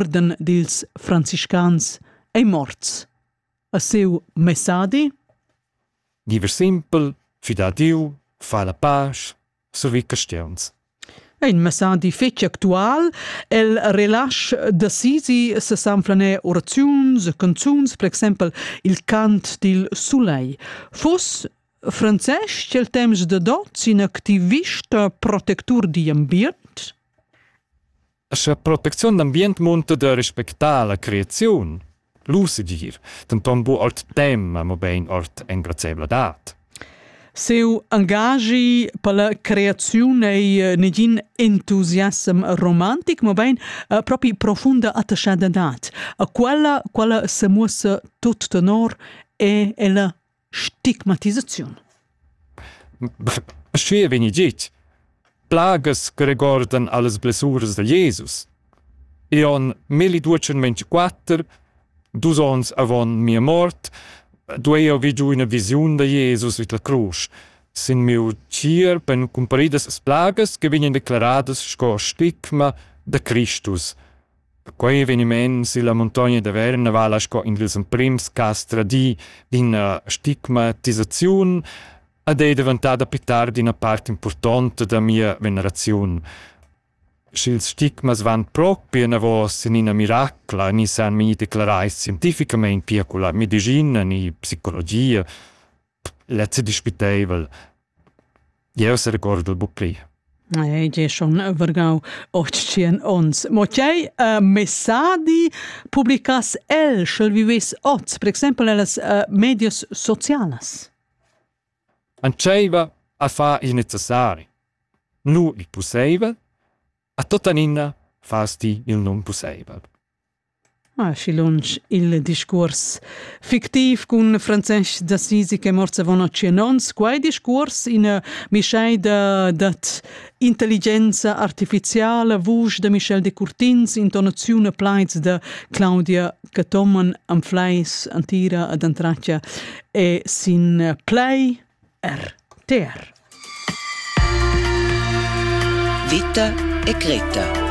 orden dils franciscans ei morts. A seu messadi? Giver simpel, fida Diu, fa la pace, survi castiuns. Ein messadi fetg actual, el relasch da Sisi se sanflaner oraziuns, canzuns, per exempel il cant dil sulei. Fus francès cel temps de dot in activista protector di ambient? Scha protecziun d'ambient munta da respectar la creaziun, lusigir, denton bu ord tema, mobein ord engrazieivladad. Seu angagi per la creaziun ei eh, negin entusiasm romantic, mobein eh, propi profunda attaschadadad. A quella, quella semuossa tut tenor e ella stigmatisaziun. Schi vegni git. Plagas che regordan allas blessuras del Jesus. E on 1224, dus ons avon mia mort, duei io vi giu una visiun de Jesus vid la cruz. Sin miu tier ben cumparidas plagas che vegnan declaradas sco stigma de Christus. Quei eveniment silla muntogna da Verna vala sco in dils emprims cass tradii d'ina stigmatisaziun ed ei daventada pli tard ina part impurtonta da mia veneraziun. Sch'ils stigmas van propi enavos en ina miracla, ni san mi declarai scientificamein pia culla medischina ni psicologia, Lezzi dispiteivel. Jeu serecordel buc pli. Ei è schon vergau otschien ons. Mo tgei uh, messadi publicas el, sch'el vives oz, per exempel nellas uh, medias socialas? Antscheiva a fa il necessari. Nu il pusseivel, a tota ninna fas ti il non pusseivel. Aschi lunsch il discuors fictiv cun Francesc d'Assisi che mort avon tschien onns. Quei discuors, ina mischeida dad intelligenza artificiala, vusch da Michel Decurtins, intonaziun e plaids da Claudia Cathomen, Anfleis, Antira ad Antracia e sin Play RTR. Vita e Greta